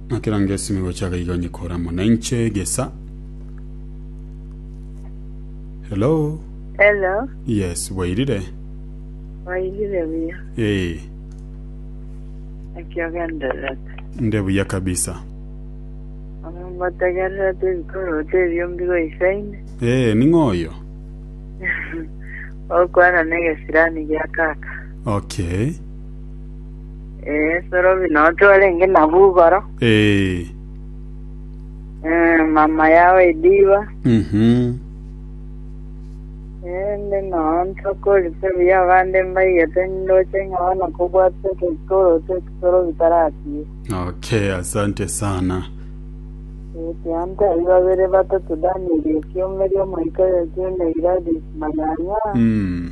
Nakera ngesime gocha gaiga onye kora mona inche gesa. Hello. Hello, Yes, bwairire. wairire buya Eh, ekiogendererete nde buya kabisa. omotegererete ebikorote ebio mbigoisaine Eh, ning'oyo. okwana negesirani gia kaka Okay. Ee, Sorobi noo twarenge nabo igoro, Ee. eh, mama yao ediba, Mhm. ende noo ntokorisa buya abande mbaigete ndoche ng'a bono kobwatwa ekekorotwe eki Sorobi taratie. Okay, asante sana. Ekianta ibabere batatu Daniel ekiomeri omoika yokiune Gladys Manyanya Mm.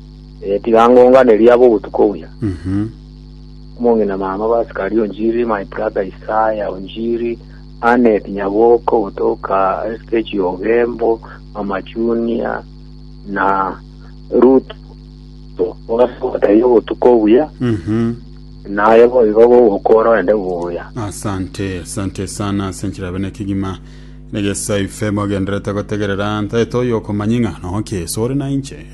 Ee, tiga ngonganerie aba obotuko buya. Mhm. Omong'ina mama Basikari onjiri, my brother Isaya onjiri, Annet Nyaboko gotoka SKG Ogembo, Mama Junior na Ruth ogasogoteria obotuko buya Mhm. naye boigo bogokora ende buya. asante asante sana ase enchera yabe nekegima negesaife mogenderete gotegerera ntaete oyo okomanya ng'a noke sore na inche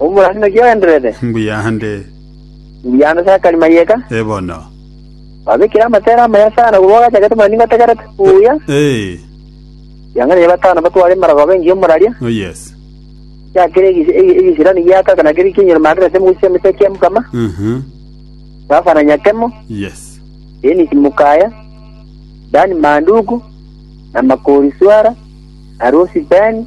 Omorani naki ogendererete? Mbuya ande. Mbuya ande sakari mayeka. E bono. Babekire amatera amaya sana korwa ogachakete buna ningotegerete. Mbuya. Ee. Riang'ana ya batano batware emarago abe engiya omoraria. Oh yes. Kia kere egesirani giaka na keri kinyure magerete emogusii y'emetwe ekia mokama. Mhm. Safa na nyakemo. Yes. Dennis Mukaya, Dan Manduku, na Makori Swara, na Rosi Ben,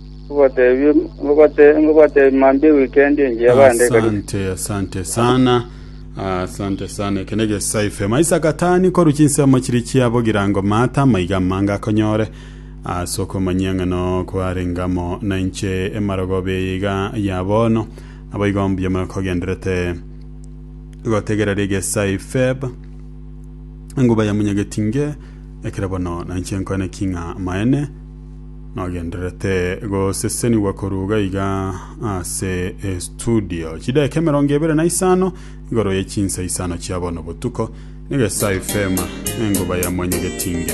Ngobateebie mambia ewikendi engiya abande ekaribu. Asante, asante sana. Asante sana. Eke ne gesaife. Maisa gatani koru chinsemo chiri chia bogirango mata maiga amange akonyore ase okomanyia ng'a no kwarengamo na inche emarogoba eye iga ya bono. Naboigo mbuya mono kogenderete gotegera rigesaife. Enguba ya munyageti nge ekero bono na inche nkoene ki ng'a maene. Nagendererete gosesenigwa koruga iga ase estudio chideka emerongo ebere na isano igoro ye chinsa isano chia bono botuko, Nigesa FM, engoba ya mwenye getinge.